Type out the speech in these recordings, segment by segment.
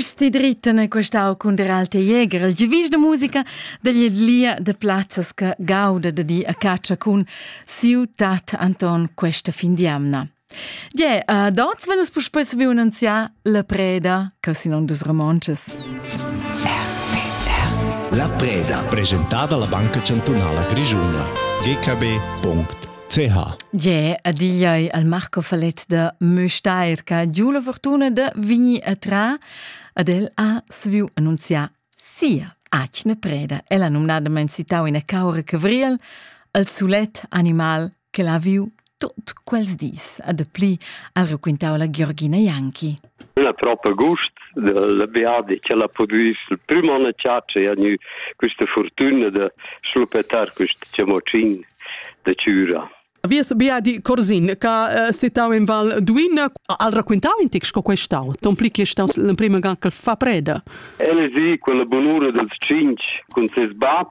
Sti dritten è questau cun der alte Jäger, il givis de musica degli lia de plazzas che gauda de di a caccia cun siu tat Anton questa fin di amna. Je, uh, dort wenn uns puspei sabi annunziar la preda, che si non des Romances. La preda. Presentata alla Banca Cantunala Grigiuna. gkb.it CH. Je, adiai al Marco Falet da Möstair, che giù la fortuna de vigni a tra, ad el ha sviu annunziar sia acne preda. El ha numnadament citau ina caura cavriel, al solet animal che l'ha viu tot quels dis, ad pli al raquintau la Georgina Ianchi. Ün ha propa gust dalla beadi ch'el ha pudü sil prüm on a chatscha e ha gnü quista furtüna da schluppetar quist chamocin da chüra. Vies beadi Corsin, ch'ha eh, sittau in Val Duina, ha racquintau in ti sco questau, ton pli che staus l'emprima ga ch'el fa preda. El es i quella bunura dels tschinch cun ses bab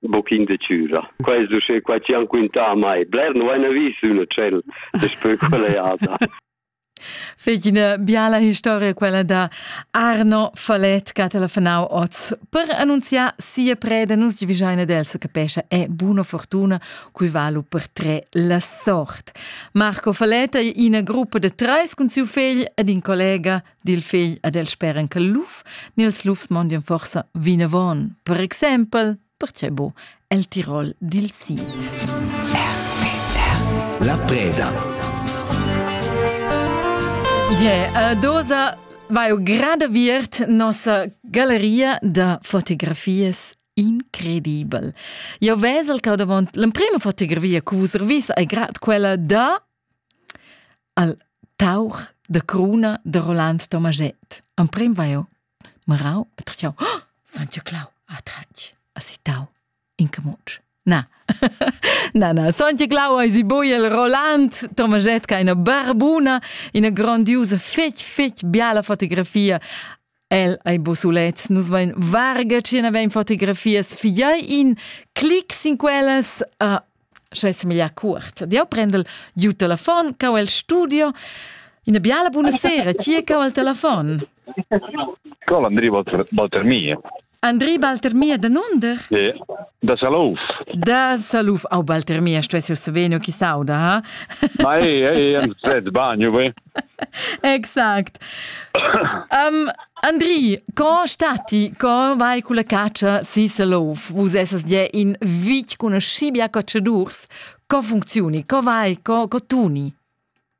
un pochino di cura. Questo se qua ci han quinta mai. Bler non hai visto un ciel después quell'eada. Fig ina biala historia quella da Arno Falet che ha telefonau oz per annunziar sia preda nus divigiaina d'Elsa capescha è buona fortuna cui valu per tre la sort. Marco Falet è ina gruppa de treis cun siu fegl ed in collega dil fegl ad el speren che luf ni els lufs mondien forsa vinavon. Per exempel, perche bo, el Tirol dil Sid. La preda. Die, uh, dosa vai o grande viert nossa galleria da fotografies incredibel. Io vesel che davant l'emprima fotografia che vus revis è grad quella da al tauch da cruna da Roland Tomaschett. Emprim va eu marau e tratschau, oh, San Clau ha tratg a si tau in camucc. Na, na, na, San Clau ha si boiel Roland Tomaschett ca ina barbuna, ina grandiusa fetg, fetg biala fotografia El ei bo sulets, nus vein varga ch'ina vein fotografias, figliai in clic sin quellas. Uh, sche semeglia cuort. Dio prendel giu telefon, cau el studio. Ina biala buona sera, ti cau al telefon. Col Andri Walter, Walter Mie. Andri Baltermia danunder? Yeah. Da Salouf. Da Salouf. Au Baltermia stuessio saveno chi sauda, ha? Ma ei, ei, ein svet bagno, ve? exact. um, Andri, co stati, co vai con la caccia si Salouf? Vus essas ja in vic conoscibia cacciadurs. Co funzioni? Co vai? Co, co tuni?